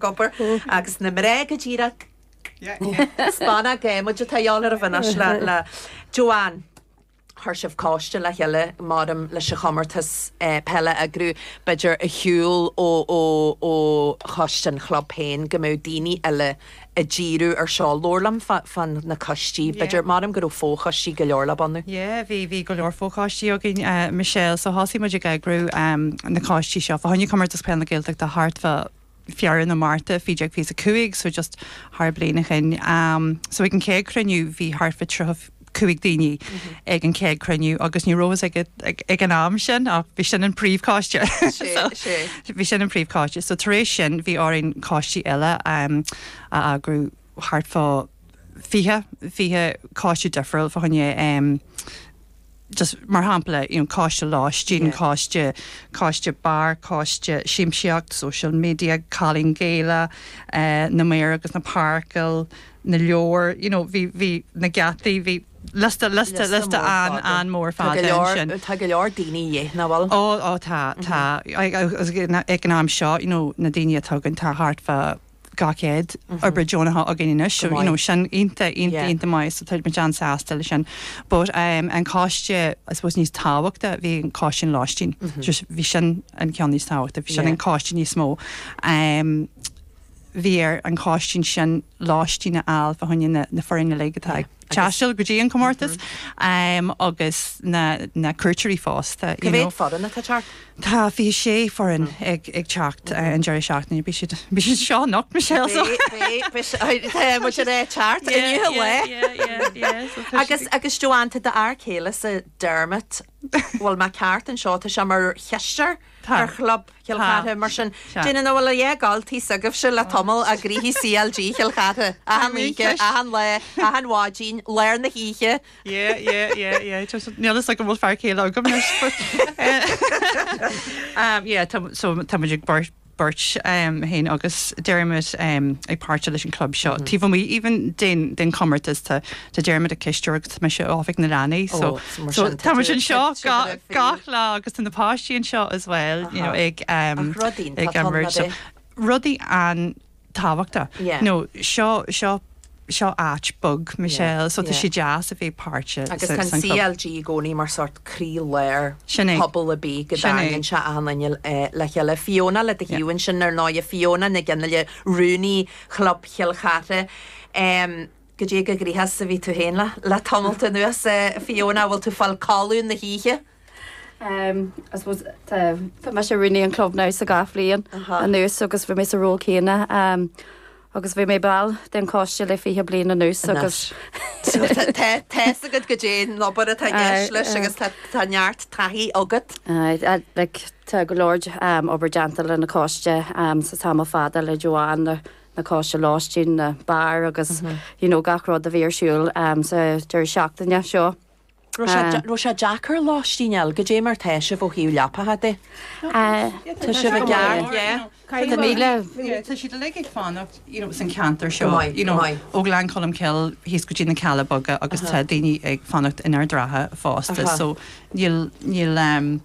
ag obair agus na mná go díreach. Spáineochaidh muid atá ag dul ar aghaidh anois le Joanne. Chuir sibh cóiste le chéile maidir leis an chomórtas peile a eagrú. B'fhéidir ar shiúl ó choiste an chlub féin go mbeadh daoine eile ag díriú ar seo. Labhair liom fá na coistí. B'fhéidir, measaim go raibh fó-choistí go leor le bunú. Yeah, bhí, bhí go leor fó-choistí againn, Michelle, so thosaigh muid ag eagrú na coistí seo. Fá choinne Comórtas Peile na Gaeltachta thart fá. Feabhra nó Márta, faoi dtaobh de fiche is a cúig, so just thar bliain ó shin. So ag an chéad chruinniú bhí thart fá tríocha cúig daoine ag an chéad chruinniú agus ní raibh a fhios ag ag an am sin ach bhí sin an príomhchoiste. Bhí sin an príomhchoiste. So tar éis sin bhí orainn coistí eile a eagrú, thart fá fiche, fiche coiste difriúil fá choinne, just, mar shampla, you know coiste lóistín, coiste, coiste beár, coiste siamsaíocht, social media, Cailín Gaelach, na maoir agus na páirceáil, na leabhair, you know bhí, bhí na geataí, bhí liosta, liosta, liosta an, an mór fada ansin. Tá go leor daoine a dhíth, nach bhfuil? Ó, ó tá, tá. Ag an am seo, you know na daoine atá againn tá thart fá. 200 oibrí deonacha againn anois so you know sin iontach, iontach, iontach maith so táimid an-sásta leis sin. But ehm an coiste I suppose níos tábhachtaí, bhí an coiste an lóistín, just bhí sin an ceann níos tábhachtaí, bhí sin an coiste níos mó. Ehm bhí ar an choiste ansin lóistín a fháil fá choinne na foirne uilig atá ag. taisteal go dtí an comórtas agus na cuairteoirí fosta. Cé mhéad foireann atá ag teacht? Tá 26 foireann ag teacht an deireadh seachtaine. Beidh siad anseo anocht Michelle so bhfuil siad ag teacht inniu. Agus agus Joanne tá d'fhear céile-sa Dermot bhfuil mé ceart anseo tá sé mar chisteoir ar chlub Chill Chartha. Mar sin, déarfainn go bhfuil achan oíche s'agaibhse le tamall ag gnoithe CLG Chill Chartha. Achan oíche, achan lá, achan mhaidin, lár na hoíche. Yeah, yeah, yeah, yeah. Níl a fhios agam an bhfuil fear céile agam leis. Yeah, so tá muid an bheirt beirt againn agus táimid ag páirteach leis an club seo. Taobh amuigh even den comórtas tá Tá Dermot ina chisteoir agus tá mise ag Oifigeach na Leanaí so tá muid anseo gach lá agus tá na páistí anseo as well you know ag rudaí rudaí an-tábhachtach nó seo seo seo áit bheag Michelle so tá sé deas a bheith páirteach agus tá an CLG i gcónaí mar sort croílár pobal ar bith go dtagann sé achan duine le chéile. Fiona le do thaobh ansin ar ndóigh, Fiona Nic Fhionnghaile, Rúnaí Chlub Chill Chartha. Goidé cé chomh gnoitheach is a bhí tú féin le tamall anuas. Fiona, bhfuil tú fáil codladh na hoíche? Em, I suppose, tá, tá mise i mo rúnaí an club now seacht mbliana anuas agus bhí mé sa ról céanna em agus bhí mé ball den choiste le fiche bliain anuas agus So tá tá tá a fhios agat goidé an obair atá i gceist leis agus tá tá neart taithí agat. Aye, a- like, tá go leor em obair déanta leis an choiste em sa tamall fada le Joanne na coiste lóistín, na beáir agus you know gach rud a bhí ar siúl sa deireadh seachtaine seo. Raibh sé deacair lóistín a fháil? Goidé mar tá sibh ó thaobh leapacha de? Tá muid i gceart yeah. Tá míle. Tá siad uilig ag fanacht you know san ceantar seo you know ó Ghleann Cholm Cill thíos go dtí na Cealla Beaga agus tá daoine ag fanacht in Ard an Rátha fosta so níl níl ehm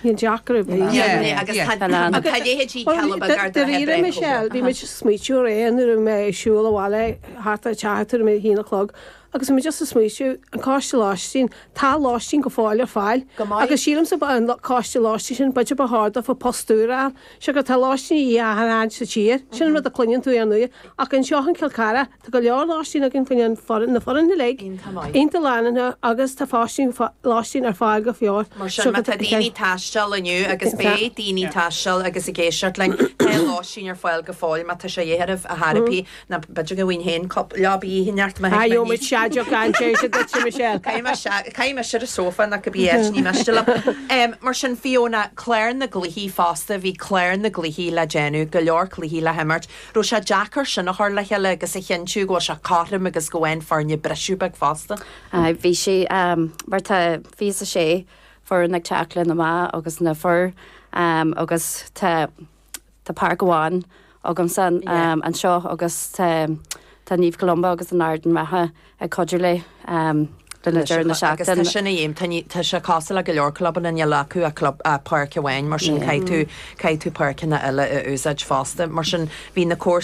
Níl deacair a bheith. Déan é agus tá a leithéidí Caleb gar do bheith ag breith chomh maith. Bhí muid ag smaointiú aréir nuair a bhí mé ag siúl abhaile thart ar teach tuairim ar a haon a chlog agus bhí mé just ag smaointiú, an coiste lóistín, tá lóistín go fóill ar fáil agus sílimse ba é an coiste lóistín sin b'fhéidir ba cheart daofa post úr a fháil, siocair tá lóistín de dhíth achan áit sa tír, sin an rud a cluineann tú ar ndóigh ach anseo i gCill Charthaigh, Tá go leor lóistín againn faoi na foirne uilig, iontach lárnach agus tá lóistín ar fáil go fóill. Mar sin má tá daoine ag taisteal inniu agus beidh daoine ag taisteal agus ag éisteacht linn, beidh lóistín ar fáil go fóill má tá sé de dhíth oraibh, a Thiarna, b'fhéidir go mbeinn féin cúpla leaba dhíth i neart mo thighme anois. Gheobhaimid séideán gan séideadh duitse Michelle. Caithfidh mé siud i sofa ná cad bith eile, ní miste liom. Mar sin Fiona, clár na gcluichí fosta, bhí clár na gcluichí le déanamh, go leor cluichí le himirt. raibh sé deacair sin a chur le chéile agus a chinntiú go bhfuil sé cothrom agus go bhfaigheann foirne briseadh beag fosta. Aye, bhí sé, mar tá fiche a sé foireann ag teacht leis na mná agus na fir agus tá, tá páirc amháin againne anseo agus tá, tá Naomh Columba agus Ard an Rátha. ag cuidiú linn le deireadh na seachtaine. Agus tá sin le déanamh, tá sé cosúil le go leor clubanna, níl acu ach páirc amháin mar sin caithfidh tú páirceanna eile a úsáid fosta. Mar sin bhí na.